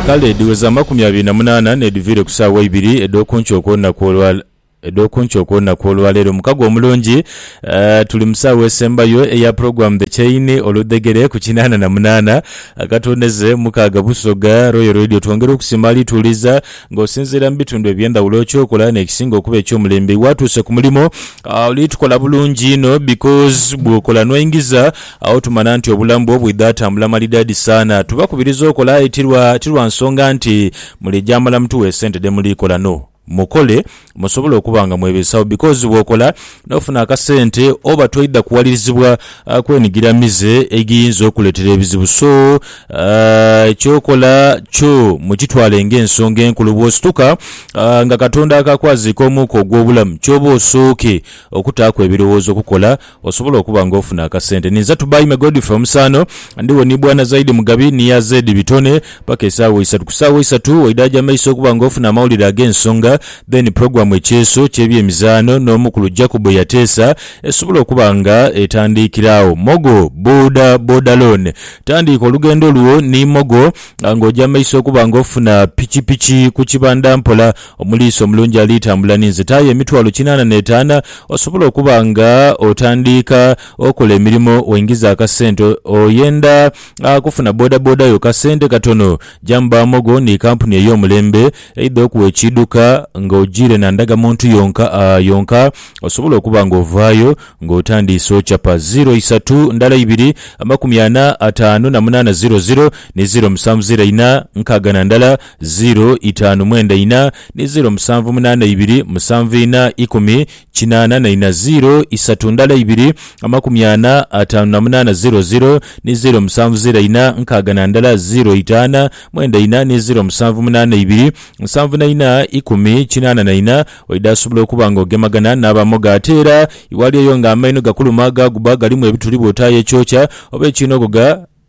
Kale edhiweza amakumi abiri na munaana n'edhiviire ku saawa ibiri edh'oku nkyo okw'olunaku olwa edh'oku nkyo okw'olunaku olwaleero. Mukago omulungi. Aah tuli mu saawa esembayo eya Program The Chain oludhegere ku kinaana na munaana akatondeze mukaaga Busoga. Royal Radio twongera okusiima ali tuwuliza nga osinziira mu bitundu eby'endhawulo ky'okola n'ekisinga okuba eky'omulembe. Iwe atuuse ku mulimo oli tukola bulungi inho because bw'okola n'oingiza. Agho tumanha nti obulamu bwo bwidha atambula malidaadi saana. Tubakubiriza okola aye ti lwa ti lwa nsonga nti muli gyamala mutuwe esente dhe muli kola no. Mukole musobole okuba nga mwebeesawo because bw'okola n'ofuna akasente oba toidha kuwalirizibwa kwenigira mize egiyinza okukuleetera ebizibu so ky'okola kyo mukitwale ng'ensonga enkulu. Bw'osituka nga Katonda akakwaziika omwuka ogw'obulamu ky'oba osooke okutaaku ebirowoozo kukola Osobola okuba nga ofuna akasente. Ninza to buy me Godfrey omusaano. Ndiwo ni Bwana Zaidi Mugabi ni Yaz Ed Bitone paka esaawa eisatu. Ku saawa eisatu waidaaja amaiso okuba nga ofuna amawulire ag'ensonga then program Ekyeeso ky'ebyemizaano n'omukulu Jacob Yateesa esobola okuba nga etandiikira agho. Mogo Boda Boda Loan. Tandiika olugendo lwo ni Mogo nga oja amaiso okuba nga ofuna pikipiki ku kibanda mpola. Omuliisi omulungi aliitambula n'enzita aye emitwalo kinaana n'etaana osobola okuba nga otandiika okola emirimo waingiza akasente oyenda kufuna bodaboda yo kasente katono Jamba Amogo ni kampuni ey'omulembe eidha okuwa ekiidhuka nga ojiire na ndagamuntu yonka yonka osobola okuba nga ovaayo nga otandiise ocapa ziro isatu ndala ibiri amakumi ana ataanu na munaana ziro ziro ni ziro musanvu ziro ina nkaaga na ndala Ziiro itaanu mwenda ina, ni ziiro musanvu munaana ibiri, musanvu ina, ikumi, kinaana na ina, ziiro isatu ndala ibiri, amakumi ana, ataanu na munaana ziiro ziiro, ni ziiro musanvu ziira ina, nkaaga na ndala, ziiro itaana mwenda ina, ni ziiro musanvu munaana ibiri, nsanvu na ina, ikumi, kinaana na ina, waidha asobola okuba nga ogemagana n'abamoga. Ate era iwali oyo nga amaino gakuluma, gaaguba galimu ebituli bw'otaayo ekyokya, oba ekiinoghoga,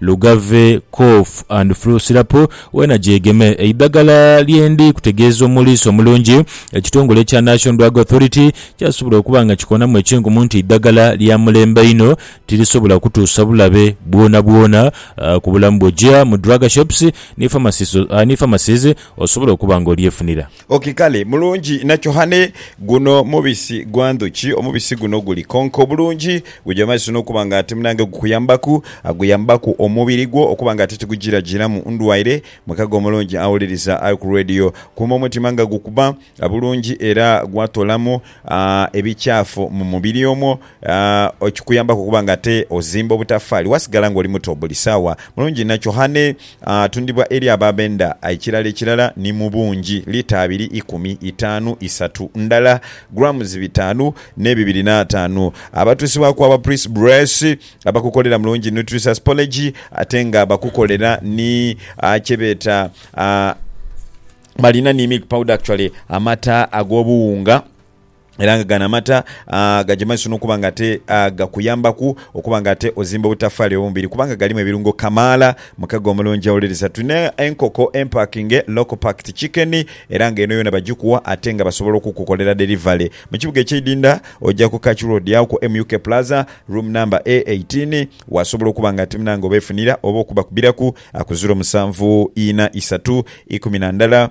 Lugave Cough and Flu Syrup weena gyegeme, eidhagala lye ndi kutegeeza omuliisa omulungi. Ekitongole ekya National Drug Authority kyasobola okuba nga kikonamu ekinkumu nti eidhagala lya mulembe inho tirisobola kutuusa bulabe bwonabwona ku bulamu bwo. Gya mu drug shops ni pharmacies osobola okuba nga olyefunira. Oki, Kale, mulungi nachohane. Guno mubisi gwa ndhuki. Omubisi guno guli konka obulungi. Guja mazisa n'okuba nga ate munange gukuyambaku. Guyambaku omubiri gwo okuba nga ate tigujirajiiramu ndwaire. Mukago omulungi awuliriza ali ku Radio, kuuma omutima nga gukuba bulungi era gwatoolamu ebikyafu mu mubiri omwo. Aah kikuyambaku okuba nga ate ozimba obutafaali wasigala nga oli muto buli saawa. Mulungi inha kyohane atundibwa eri abo abenda ekirala ekirala ni mu bungi, lita abiri, ikumi, itaanu, isatu, ndala, grams bitaanu ne bibiri n'ataanu. Abatuusibwaku aba Pris Bress abakukolera Mulungi Nutricious Porridge ate nga bakukolera ni kye beeta Balina ni milk powder actually amata ag'obuwunga. era nga gano amata gagemaisa n'okuba nga ate gakuyambaku okuba nga ate ozimba obutafaali obw'omubiri kubanga galimu ebirungo kamaala. Mukago omulungi awuliriza. Tulina enkoko empakinge, local packed chicken, era nga eno yoona bagikuwa ate nga basobola okukukolera delivery. Mu kibuga eky'e Idinda oja ku Kach Road agho ku MUK Plaza, room number A eighteen, wasobola okuba nga ate munange obeefunira oba okubakubiraku ku ziro musanvu ina isatu ikumi na ndala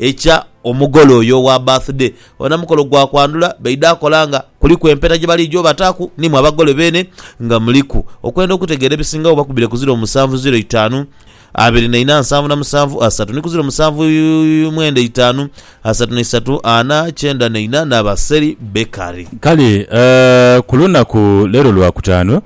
Ekya omugole oyo owa birthday ona mukolo gwa kwandhula baidha akola nga kuliku empeta gye baliija obataaku ni mwe abagole beene nga muliku. Okwenda okutegeera ebisingagho bakubire ku ziro musanvu ziro itaanu abiri na ina nsanvu na musanvu asatu ni ku ziro musanvu mwenda itaanu asatu na isatu ana kyenda na ina na Baseri Bakery. Kale ku lunaku leero Lwakutaanu,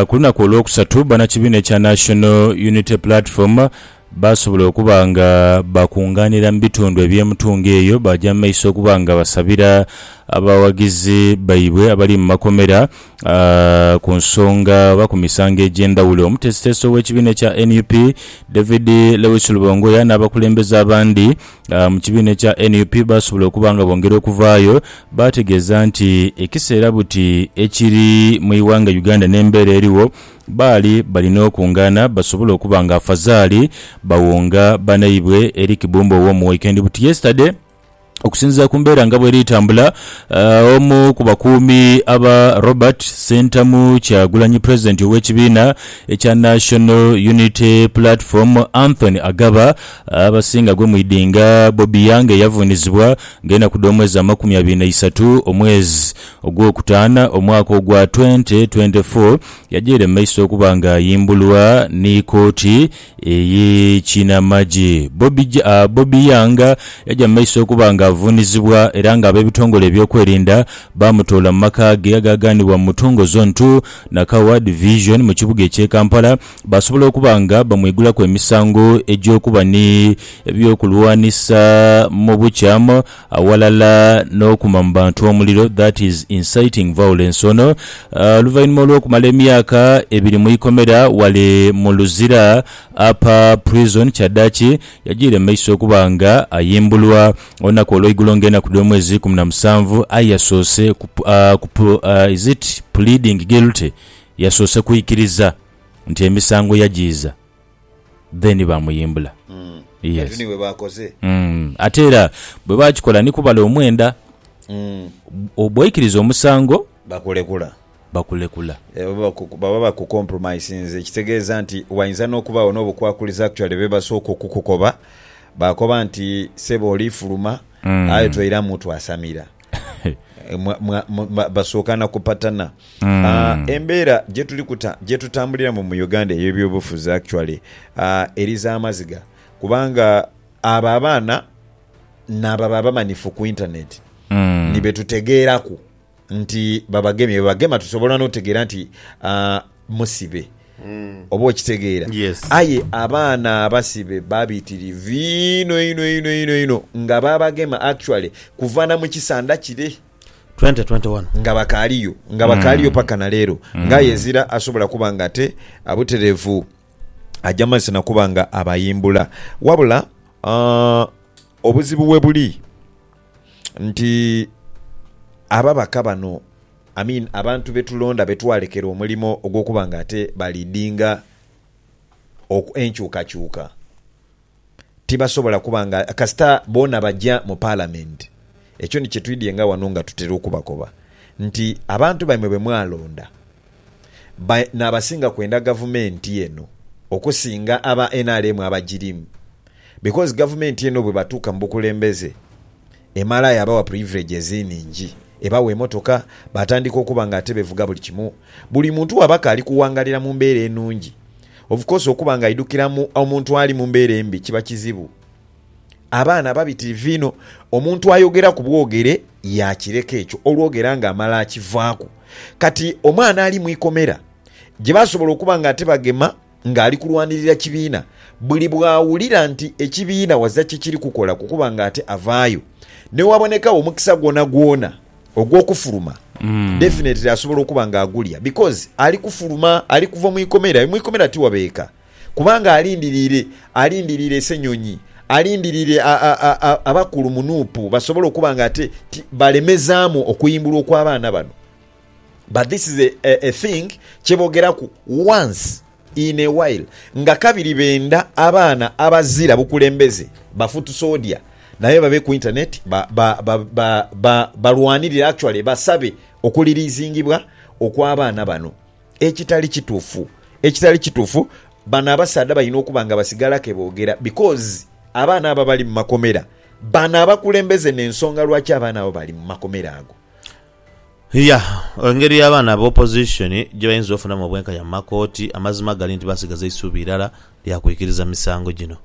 ku lunaku Olwokusatu, bannakibiina ekya National Unity Platform, Baasobola okuba nga baakungaanira mu bitundu eby'emutungo eyo, baaja mu maiso okuba nga basabira abawagizi baibwe abali mu makomera ku nsonga oba ku misango egy'endhawulo. Omuteesiteesi ow'ekibiina ekya nup, David Lewis Lubongoya n'abakulembeze abandi mu kibiina ekya nup baasobola okuba nga bongera okuvaayo baategeeza nti ekiseera buti ekiri mu ighanga Uganda n'embeera erigho, Baali balina okungaana basobole okuba nga afazaali bawonga banaibwe eri Kibumba ow'omu Waikendi buti yesterday. Okusinziira ku mbeera nga bweri etambula, omu ku bakuumi aba Robert Ssentamu Kyagulanyi president ow'ekibiina ekya National Unity Platform Anthony Agaba abasinga gwe mwidinga Bobi Young eyavuunizibwa nga enaku dh'omwezi amakumi abiri na isatu omwezi Ogwokutaana, omwaka ogwa twente twente fo, yajeire mu maiso okuba nga ayimbulwa ni kooti eye kinamagye. Bobi Bobi Young yaja mu maiso okuba nga avuunizibwa era nga abebitongole ebyokwerinda baamutoola mu maka ge agaaganibwa mu Mutungo Zone ii, Nakawa Division mu kibuga ekye Kampala baasobola okuba nga bamwigulaku emisango egyokuba ni ebyokulwanisa mu bukyamu. awalala n'okuma mu bantu omuliro, that is inciting violence, ono oluvainhuma olw'okumala emyaka ebiri mu ikomera wale mu Luzira Upper Prison kyadaki yajiire mu maiso okuba nga ayimbulwa olunaku olweigulo nga enaku dh'omwezi ikumi na musanvu aye yasoose ku is it pleading guilty yasoose kwikiriza nti emisango yajiiza. then bamuyimbula. Yes. Kati ni bwe baakoze. Mm. Ate era bwe baakikola ni kubala omwenda. Mm. Bw'oikiriza omusango. Bakulekula. Bakulekula. Baba bakukompuromisinze ekitegeeza nti wainza n'okubaagho n'obukwakulizo actually be basooka okukukoba. Baakoba nti, Ssebo oliifuluma aye toiramu twasamira. Mwa- mwa- mwa- ba- basooka na kupatana Mm. Ah, embeera gyetuli kuta- gyetutambuliramu mu uganda ey'ebyobufuzi actually ah, eri za maziga kubanga abo abaana naabo aba abamanifu ku intaneti Mm. nibetutegeeraku nti babagemye bebagema tusobola n'otegeera nti ah, musibe. Oba okitegeera? Yes. Aye abaana abasibe babitirivu inho inho inho inho inho nga babagema actually kuva na mu kisanda kire 2021. nga bakaaliyo nga bakaaliyo paka na leero ng'aye ezira asobola kuba nga ate ah, butereevu ajja mazisa na kuba nga abayimbula wabula ah, obuzibu we buli nti ababaka bano I mean abantu betulonda betwalekera omulimo ogwokuba nga ate ba leadinga oku enkyukakyuka tibasobola kuba nga kasita boona baja mu parliament ekyo ni kyetwidhye nga wano nga tutera okubakoba nti abantu baimwe bemwalonda ba nabasinga kwenda gavumenti eno okusinga aba nrm abajirimu because gavumenti eno bwebatuuka mubukulembeze Emala yaabawa purivulegi ezinhingi. Ebawa emotoka, baatandika okuba nga ate bevuga buli kimu. Buli muntu waba kaali kuwangalira mu mbeera enungi. Of course okuba nga aidhukira mu omuntu ali mu mbeera embi kiba kizibu. Abaana babitirivu inho, omuntu ayogera ku bwogere yaakireka ekyo olwogera nga amala akivaaku. Kati omwana ali mu ikomera gye basobola okuba nga ate bagema Ng'ali kulwanirira kibiina, buli bw'awulira nti ekibiina waza kye kiri kukola kukuba ng'ate avaayo. Ni wabonekagho omukisa gwonagwona ogw'okufuluma, definitely asobola okuba ng'agulya because ali kufuluma, ali kuva mu ikomera. Aye mu ikomera tiwabeeka kubanga alindiriire, alindiriire Ssenyonyi, alindiriire a, a, a, a, abakulu mu nup basobole okuba ng'ate ti, balemezaamu okuyimbulwa okw'abaana bano. But this is a a thing kyebogeraku once in a while nga kabiri benda abaana abazira bukulembeze ba foot soldier naye babe ku internet ba ba ba ba ba balwanirire actually basabe okulilizingibwa okwa baana bano ekitali kitufu ekitali kitufu bano abasaadha balina okuba nga basigala kebogera because abaana abo abali mumakomera bano abakulembeze nensonga lwaki abaana abo bali mumakomera ago Yah, engeri abaana ba opposition gye bayinza ofunamu obwenkanya mu makooti, amazima gali nti basigaza isuubi irala lya kwikiriza misango gino.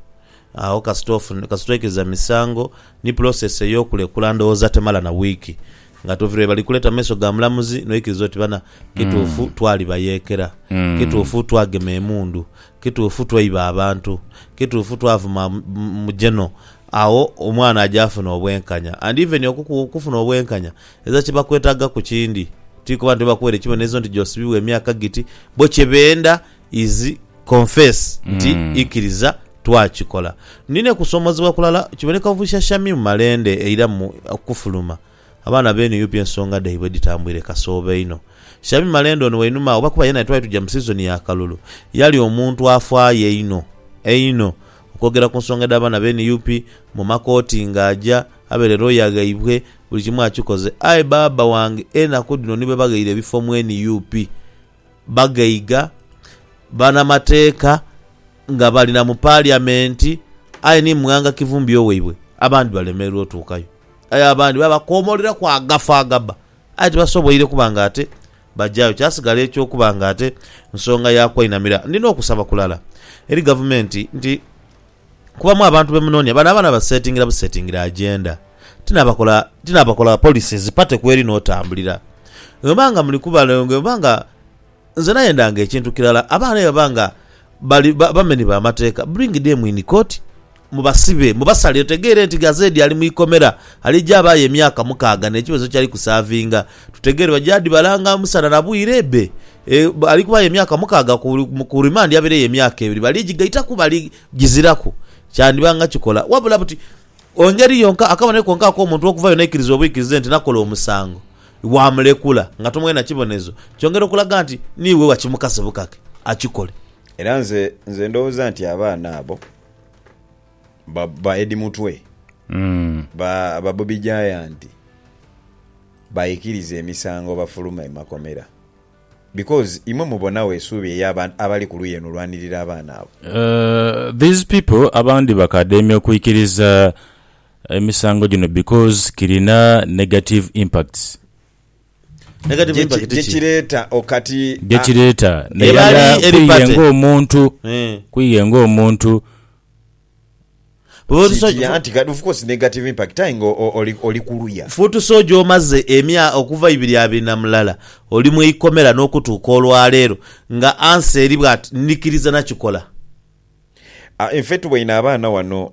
Agho kasita ofuna, kasita oikiriza misango, ni process ey'okulekula ndhoghoza temala na wiiki nga tovirwa ye bali kuleta mu maiso ga mulamuzi, noikiriza oti bana, kituufu twalibayeekera, kituufu twagema emundu, Kituufu tweiba abantu, kituufu twavuma mu geno agho omwana aja afuna obwenkanya and even okufuna obwenkanya eza kyebakwetaga ku kindi ti kuba nti bakuwere kibonerezo nti josibibwa emyaka giti bo kyebenda is confess nti ikiriza twakikola. Nina kusomozebwa kulala kiboneka obushashami mu malende eira mu okufuluma. Abaana be nup ensonga dhaibwe dhitambwire kasoobo inho. Shamim Malende ono wainuma agho kuba yena yetwali tuja mu season ya kalulu yali omuntu afaayo einho einho okwogera ku nsonga edha baana be nup mu makooti nga aja abere lawyer ghaibwe buli kimu akikoze aye baaba wange enaku dhino ni bwe baghaire ebifo mu nup bagaiga banamateeka nga bali na mu Paliamenti aye ni mwanga kivumbio waibwe, abandi balemererwa otuukayo. Aye abandi babakoomoleraku agafu agabba aye tibasoboire kuba ng'ate bajayo. Kyasigala eky'okuba ng'ate nsonga ya kwainamira. Ndina okusaba kulala eri Gavumenti nti Kubamu abantu bemunonia bano abaana basetingira busetingira agenda tinabakola tinabakola policies party kweri notambulira bwemba nga muli kubalongo bwemba nga nze nayenda nga ekintu kirala abaana bwebaba nga bali bameni bamateka bring them in court mubasibe mubasalire tutegeere nti Gazedi ali mwikomera alija abaayo emyaka mukaaga nekibonezo kyali kusavinga tutegeere baja dibalanga musana na bwire be E, ali kubayo emyaka mukaaga ku, ku rimandi abaireyo emyaka ebiri. Baligigaitaku, baligiziraku. Kyandiba nga kikola wabula buti ongeri yonka, akabonero konka ak'omuntu okuvayo n'aikiriza obuikirize nti nakola omusango, waamulekula nga tomughaire na kibonerezo kyongera okulaga nti niiwe wakimukase bukake akikole. Era nze, nze ndowooza nti abaana abo ba, ba Eddie Mutwe, ba, ba Bobi Giant, baikiriza emisango bafuluma emakomera. because imwe mubonagho esuubi eya bantu abali ku luyi eno olwanirira abaana abo. These people abandi bakademya okwikiriza emisango gino because kirina negative impacts. Negative impact ki? Gyekireeta o kati a. Gyekireeta nairala kwiiye ng'omuntu, kwiiye ng'omuntu. Kikiri anti kati of course negative impact aye nga oli kuluya. Foot Soldier omaze emya okuva ibiri abiri na mulala oli mu ikomera n'okutuuka olwaleero nga answer eri bwati ndhikiriza nakikola. Ffe tuboine abaana wano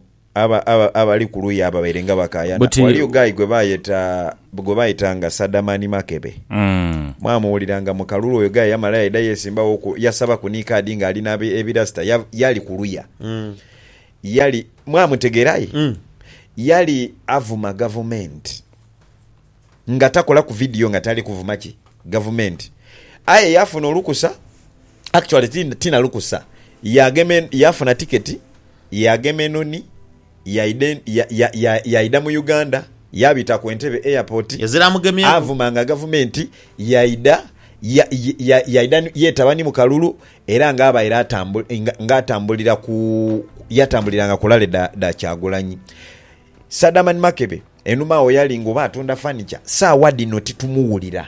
abali kuluya ababaire nga bakayana. Waliyo guy gwebayeta gwe baitanga Sadamani Makebe. Mwamuwuliranga mu kalulu. Oyo guy yamala yaidha yesimbawo ku, yasaba ku ni kaadi nga ali na ebirasita. Ya, yali kuluya. Yali, mwamutegera aye? Yali avuma gavumenti, nga takolaku vidiyo nga tali kuvuma ki? Gavumenti. Aye yafuna olukusa, actually ti, ti na lukusa, yagema, yafuna tiketi, yagema enoni. yaidha yaidha mu Uganda yaabita ku Entebbe Airport avuma nga Gavumenti yaidha yaidha yeetaba ni mu kalulu era nga abaire nga atambulira ku yatambuliranga ku lale dha Kyagulanyi. Sadamani Makebe enhuma agho yali nga oba atunda fanica, saagha dhino titumuwulira.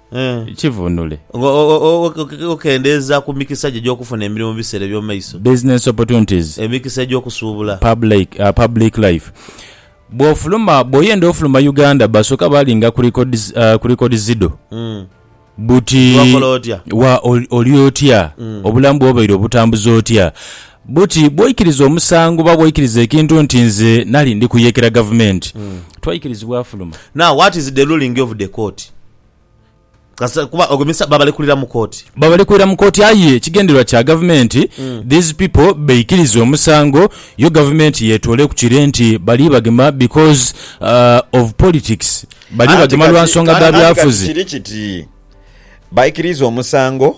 kivunule. Nga okendeeza ku mikisa gyo egy'okufuna emirimu mu biseera eby'omu maiso. Business opportunities. Emikisa egy'okusuubula. Public life. Bw'ofuluma, bw'oyenda ofuluma Uganda basooka baalinga ku records dho buti wa oli otya, obulamu bwo obaire obutambuza otya. Buti bw'oikiriza omusango oba bw'oikiriza ekintu nti nze nali ndi kuyeekera gavumenti, twaikirizibwa afuluma. Now what is the ruling of the court? Kasita kuba ogwo misa babalekulira mu kooti. Babalekulira mu kooti aye ekigendererwa kya gavumenti these people beikirize omusango yo gavumenti yetooleku kire nti bali bagema because of politics, bali Anti bagema lwa kati, nsonga dha anti kati byafuzi. kiri kiti, baikiriza omusango.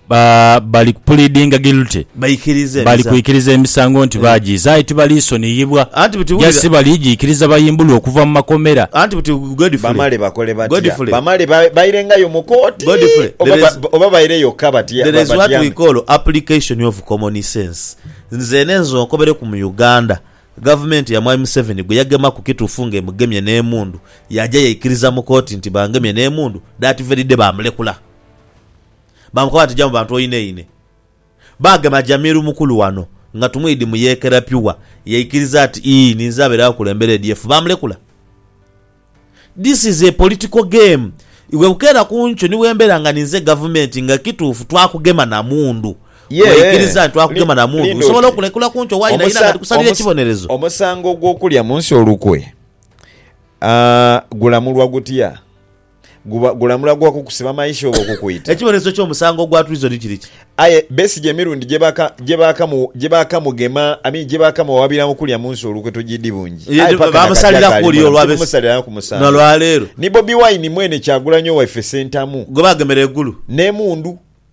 Ba, bali kupuliidinga guilty. Baikiriza Bali emisango. kwikiriza emisango nti baagiiza, aye tibaliisoniyibwa. Anti buti Ja wulira. si baliigiikiriza bayimbulwe okuva mu makomera. Anti buti Godfrey. Bamale bakole batya? Godfrey. Bamale ba- bairengayo mu kooti? Godfrey, Oba there ba- is- oba baire yokka batya- There ba- is what we batyame? call application of common sense. Nzeene nze onkobereku mu Uganda, gavumenti ya Mwami Museveni gwe yagemaku kituufu nga emugemye n'emundu, yaja yaikiriza mu kooti nti bangemye n'emundu, that very day baamulekula. Baamukoba bati, Ja mu bantu oyineine. Baagema Jamil mukulu wano nga tumwidi mu yeekera Pure. Yaikiriza ati, Ii, ninze abaire akulembera ADF. Baamulekula. This is a political game. Iwe bukeera ku nkyo ni bwembeera nga ninze gavumenti nga kituufu twakugema na mundu. Ye, Waikiriza nti twakugema na mundu. linda Nsobola oti, okulekula ku nkyo waayinayina nga omusa, ndikusalira omusa, ekibonerezo. omusango ogw'okulya mu nsi olukwe, ah, gulamulwa gutya? Guba gulamula gwa kukusiba maisha oba okukwita. Ekibonerezo ky'omusango ogwa treason kiri ki? Aye Besigye emirundi gye baakamugema, I mean gye baakamuwawabira okulya mu nsi olukwe togiidhi bungi. Aye paka na kati akyaalimu lamu, tibumusaliraku musango. Ni Bobi Wine mwene Kyagulanyi owaife Ssentamu. Gwe baagemera e Gulu. N'emundu.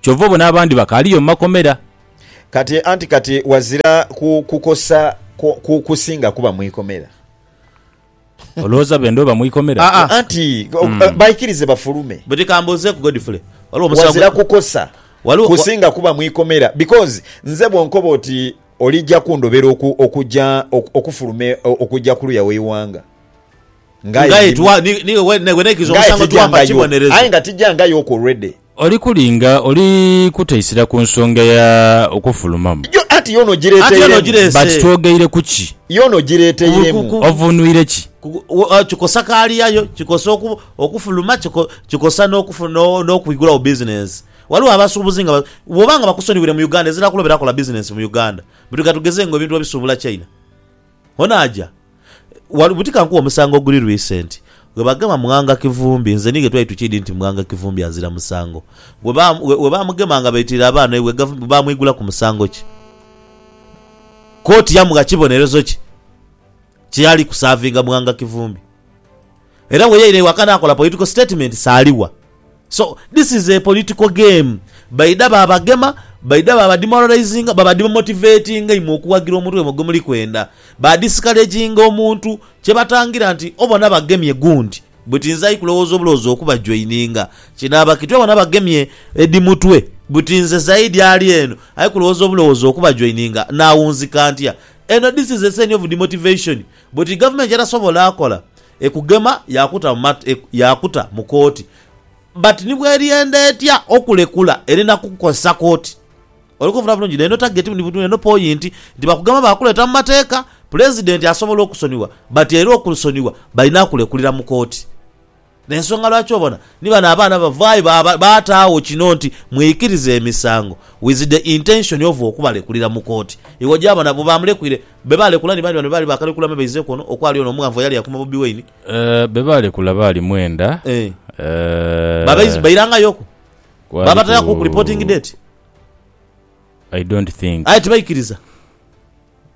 Kyova obona abandi bakaaliyo mu makomera. Kati, anti kati wazira ku kukosa ku kusinga kuba mu ikomera. Olowooza benda oba mu ikomera? Aa. Anti baikirize bafulume. Buti kambuuzeeku Godfrey, waliwo omusawo gwe. Wazira kukosa kusinga kuba mu ikomera because nze bwonkoba oti olija kundobera okuja okufuluma okuja kuluya w'eighanga. Ngaye twa, ni, ni, we, ne, we neikiriza Ngaye omusango tijja twa mba nga yo. kibonerezo. Aye nga tijja nga yo ku ready. Oli kulinga, oli kuteisira ku nsonga ya okufulumamu. Yo, anti yo Anti yo n'ogireeteiremu. But n'ogireese. twogeire ku ki? Yo n'ogireeteiremu. Ku- Ovunuire ki? Ku- ku- o- Kikosa kaali yayo, kikosa oku, okufuluma, kiko, kikosa n'okufu, no, n'okwigulawo bizinensi. Waliwo abasuubuzi nga ba, bwoba nga bakusonyiwire mu Uganda ezira kulobera kola bizinensi mu Uganda. Bwetuga tugeze nga ebintu babisuubula China. Onaaja wa lu? Buti ka nkuwe omusango oguli recent. Bwebagema Mughanga Kivumbi, nze ni ghe twali tukiidhi nti Mughanga Kivumbi azira musango. Bwe baamugema nga baitiire abaana eibwe, Gavumenti baamwigulaku musango ki? Kooti yamugha kibonerezo ki kye yali kusaavinga Mughanga Kivumbi? Era bweyaira ewaka nakola political statement saligha so this is a political game baidha babagema baidha baba demoralizinga baba demotivatinga imwe okuwagira omuntu waimwe gwemuli kwenda ba discouraginga omuntu kyebatangira nti obona bagemye gundi buti nze aikulowooza obulowooza okuba joininga kinaaba kiti obona bagemye Eddy Mutwe buti nze Zaidi ali eno aikulowooza obulowooza okuba joininga nawunzika ntya eno this is a sign of demotivation Bweti gavumenti yetasobola kola ekugema yakuta mu kooti but ni bweriyenda etya okulekula erina kukozesa kooti. Oli kunfuna bulungi? Neno target ni buti neno point nti bakugema bakuleta mu mateeka pulezidenti asobola okusonyiwa but era okusonyiwa balina kulekulira mu kooti. N'ensonga lwaki obona ni bano abaana bavaayo baataagho kino nti mwikirize emisango with the intention of okubalekulira mu kooti. Iwe oja bona bwe baamulekwire, be baalekula ni bani bano be baali baakalekula me baizeeku ono okwali ono omughanvu eyali akuuma Bobi Wine? Be baalekula baali mwenda. Bairangayoku? Baabataaku ku reporting date? I don't think. Aye tibaikiriza?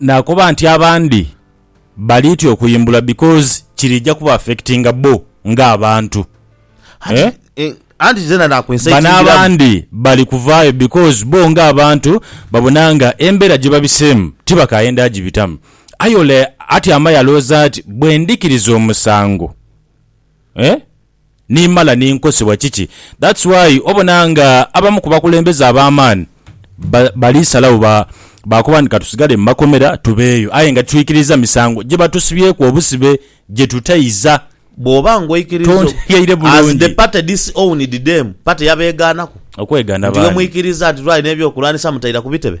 Nakoba nti abandi balitya okuyimbulwa because kirija kuba affectinga bo nga abantu eeh. Anti zena nakwesayitingira mu. Bano abandi bali kuvaayo because bo nga abantu babona nga embera gyebabiseemu tibakayenda agibitamu. Aye ole atyama yalooza ati bwendhikiriza omusango eeh. ni mala ni nkosebwa kiki that's why obona nga abamu ku bakulembeze abamaani ba bali salawo ba bakoba nti katusigale mu makomera tubeeyo aye nga titwikiriza misango gye batusibyeku obusibe gye tutaiza Bwoba nga oikiriza oku Tontegheire as bulungi. the party dis owned dem party yabegaanaku Okwegana nti bani? ghemwikiriza nti lwali n'ebyokulwanisa mutaira ku bitebe?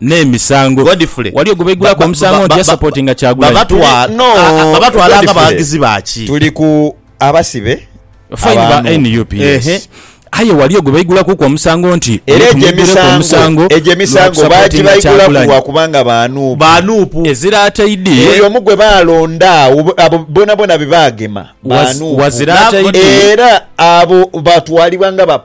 n'emisango. Godfrey waliyo gwebaigulaku omusango nti yasupportinga Kyagulanyi. Babatwala nga baghagizi baki? Tuli ku abasibe Fine ba nup yes. Aye waliyo gwebaigulakuku omusango nti Era egyo emisango egyo emisango baagibaigulaku lwa kubanga ba nup. Ezira ataidi. Buli omu gwe baalonda agho abo bonabona be baagema ba nup. Era abo batwalibwa nga ba.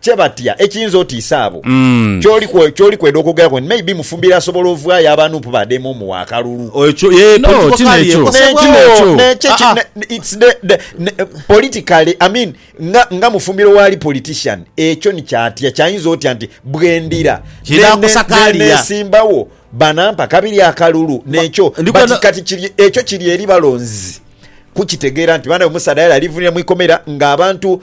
kye batya ekiyinza otiisa abo. Ky'oli kwe, ky'oli kwenda okwogeraku nti maybe Mufumbiro asobola ovwayo aba Nup badeeme omuwa akalulu. Ekyo, yee, No, political ti career n'ekyo. ekosebwa. Ti Nekyo, n'ekyo. nekyo Ah, ki, ah. ne, ne, it's the, the, ne, politically, I mean, nga, nga Mufumbiro waali politician, ekyo ni kyatya, kyayinza otya nti bwendira, Kye ne, ne, ne, nakusakaalira. nesimbawo, banampa kabiri akalulu, nekyo, ndi but kwenda- kati kiri, ekyo kiri eri balonzi kukitegeera nti banabe omusaadha yali alivunira mu ikomera ng'abantu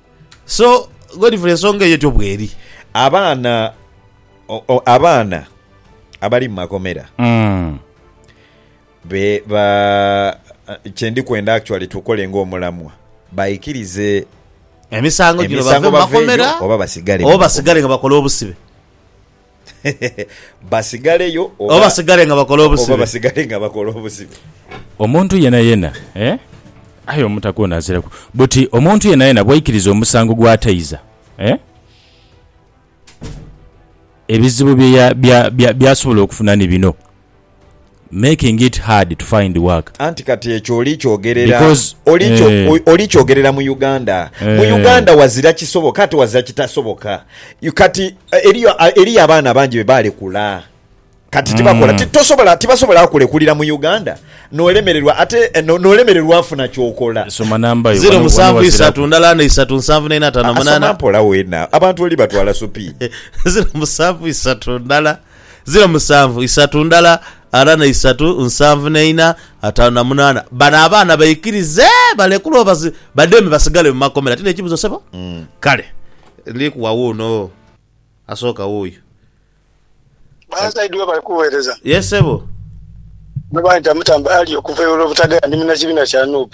So Godfrey ensonga eyo etyo bweri. Abaana abaana abali mu makomera kyendi kwenda actually tukole ng'omulamwa baikirize emisango gino bave mu makomera oba basigale nga bakola obusibe. basigaleyo Oba oba, basigale nga bakola oba obusibe. basigale nga bakola obusibe. Omuntu yenayena, eh? Aye omutaka ono aziraku. Buti omuntu yenayena bwaikiriza omusango gwataiza, eh? Ebizibu bye ya, bya, bya, byasobola okufuna ni bino. making it hard to find work. Anti kati ekyo oli kyogerera oli kyogerera mu Uganda. Mu eh. Uganda wazira kisoboka ate wazira kitasoboka. Kati eh, eriyo eh, eriyo abaana abangi be balekula kati tibakola mm. tosobola tibasobola kulekulira mu Uganda nolemererwa ate eh, nolemererwa afuna kyokola soma namba yo zero musanvu isatu ndala ne isatu nsanvu ne nata na munana mpola wena abantu oli batwala supi zero musanvu isatu ndala Ziro musanvu, isatu ndala, ana na isatu, nsanvu na ina, atano na munana. Bano abaana baikirize balekule oba bademe basigale mu makomera? Ti nekibuzo sebo? Kale ndi kuwa wuuno asooka wuuyo. Bansaidi we bali kuwereza. Yes sebo. Muno banita Mutamba Ali okuva e Lwobutagala ndi munakibina kya Nup.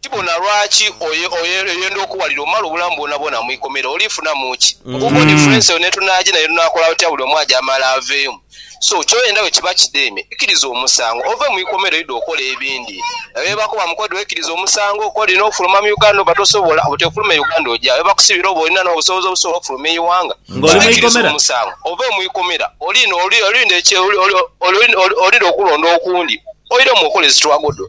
Tibona lwaki oyenda okuwalira omale obulamu bwonabwona mu ikomera. Olifunamu ki? Obuubo difference eyo netunaje nayo tunakola tutya buli omu aje amale aveemu. So kyoyenda wekiba kideme ikiriza omusango ove mu ikomera oide okola ebindi. Eyo webakoba mukodo wekirize omusango okola olina ofuluma mu Uganda oba tosobola bwe tofuluma e Uganda oja wa? Webakusibira oba olina nobusobozi obusobola okufuluma e iwanga kyoka ikiriza omusango ove mu ikomera olinde olinde okulonda okundi oidemu okole zi twagodo.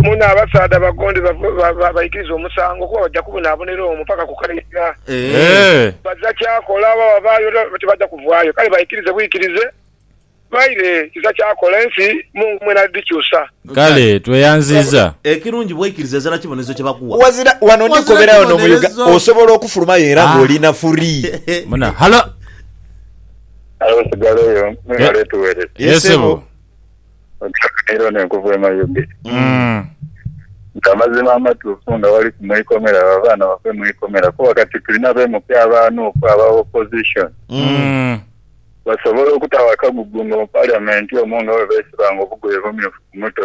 Muno abasaadha abagonde baikiriza omusango, kuba baja kubonabonera omwo paka ku kale iga. Baja kyakola oba wabaayo oba tibaja kuvaayo. Kale baikirize bwikirize, baire kiza kyakola, ensi Mungu mwene alidhikyusa. Kale tweyanziza. Ekirungi bweikiriza ezira kibonerezo kye bakuwa. Wazira wano ndi kobera wano mu Uga osobola okufulumayo era nga oli na free. Awo sigaleyo mwebale tuwereza. Ye sebo. Ogisanira ono enkovu emayuge. Nti amazima amatuufu nga waliku mu ikomera abo abaana bafe mu ikomera kuba kati tulina bemuke aba nup aba opposition basobole okutawo akagugu nga mu parliament omwo nga bwebesibanga obugoye obumyufu ku mutwe